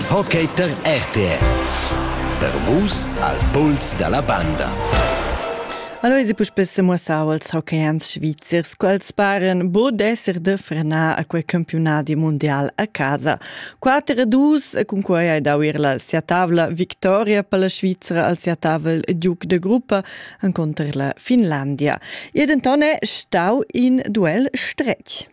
Hockey per RTR. Per vus al puls dalla banda. Allora si puspè muossau als hockeyans svizzers quals paren bod esser de frenar a quei campionadi mondial a casa. 4 a 2 cun quei hai dau ir la sia tavla victoria per la Svizzera al sia tavel giuc de gruppa an conter la Finlandia. E dentone stau in duel stretg.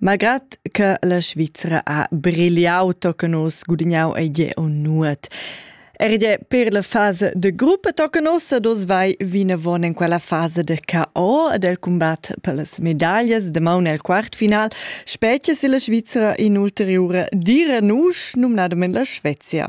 Malgrad che la Svizra ha brigliau tochen oz gudignau ei jeu nuot. Era gie per la fasa de gruppa tochen oz ed oz vai vinavon en quella fasa de KO ed el combat per las medaglias damaun el quartfinal, spetga si la Svizra in'ulteriura dira nusch, numnadamein la Svezia.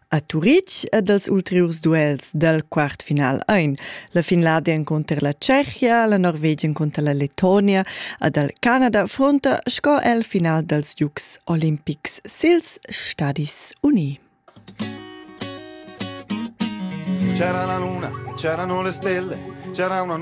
A Turitg ed als ulteriurs duels dal quartfinal ein la Finlandia encunter la Tschechia, la Norvegia encunter la Letonia ed el Canada fronta sco el final dals Giugs olimpics sils Stadis Uni. C'era la luna, c'erano le stelle, c'era una